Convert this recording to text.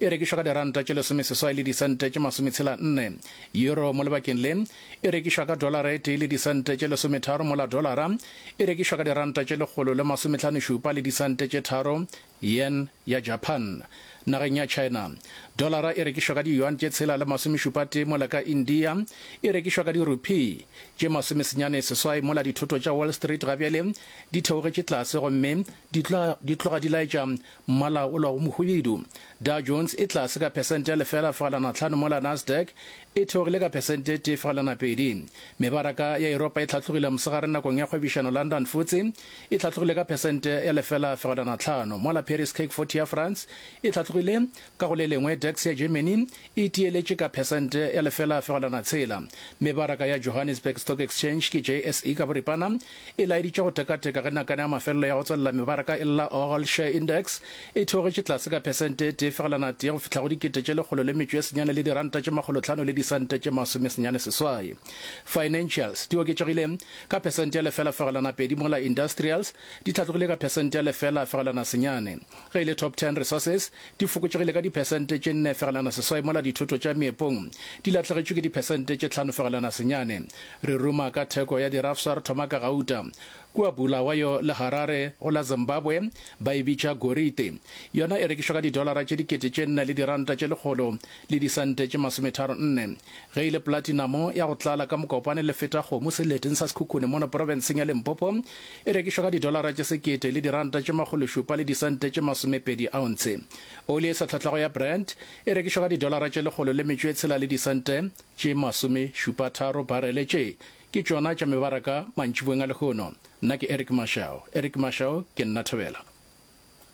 e rekišwa ka diranta tše lesomeseswai le disente tše masometshela nne. Euro mo lebakeng le e rekišwa ka dolara e tee le disente tše lesometharo mola dolara e rekišwa ka diranta tše lekgolo le masomehlanošupa le disente tše tharo. Yen ya Japan. Nageng ya China, dolara e rekišwa ka diyuan tše tshela le masomešupatee mola ka India e rekišwa ka dirupee tše masomesenyane seswai mola dithoto tša Wall Street gabjale di theogetše tlase gomme di tloga di laetša Mmala ola o mohubedu. Dow Jones e tlase ka phesente ya lefela fegelwana tlhano mola Nasdaq e theogile ka phesente ye tee fegelwana pedi. Mebaraka ya Yuropa e hlatlogile mosegare nakong ya kgwebišano London Futse e hlatlogile ka phesente ya lefela fegelwana tlhano mola Paris CAC 40 ya France e hlatlogile Ka go le lengwe, tax ya Germany e tiyeletše ka phesente ya lefela fegelwana tshela. Mebaraka ya Johannesburg Stock Exchange, ke JSE ka boripana, e laeditše go tekateka ge nakana ya mafelelo ya go tswalela mebaraka e lla All Share Index e theogetše tlase ka phesente e tee fegelwana tee go fihla go dikete tše lekgolo le metšo e senyane le diranta tše makgolo tlhano le disente tše masome senyane seswai. Financials di oketšegile ka phesente ya lefela fegelwana pedi mola Industrials di hlatlogile ka phesente ya lefela fegelwana senyane. Ge e le Top Ten Resources, di fokotšegile ka diphesente tše nne fegelwana seswai mola dithoto tša meepong di lahlegetšwe ke diphesente tše tlhano fegelwana senyane. Re ruma ka theko ya dirafsa re thoma ka gauta. Kua Bulawayo le Harare go la Zimbabwe ba e bitša gorite. Yona e rekišwa ka didolara tše dikete tše nne le diranta tše lekgolo le disente tše masometharo nne. Ge e le platinamo ya go tlala ka mokopane le feta kgomo seleteng sa Sekhukhune mono profenseng ya Limpopo, e rekišwa ka didolara tše sekete le diranta tše makgološupa le disente tše masomepedi aontshe. Oli e sa hlahlago ya Brent e rekišwa ka didolara tše lekgolo le metšo e tshela le disente tše masomešupatharo barele. Tše ke tšona tša mebaraka mantšiboeng a lehono. Nna ke Eric Mashau. Eric Mashau, Ke nna Thobela.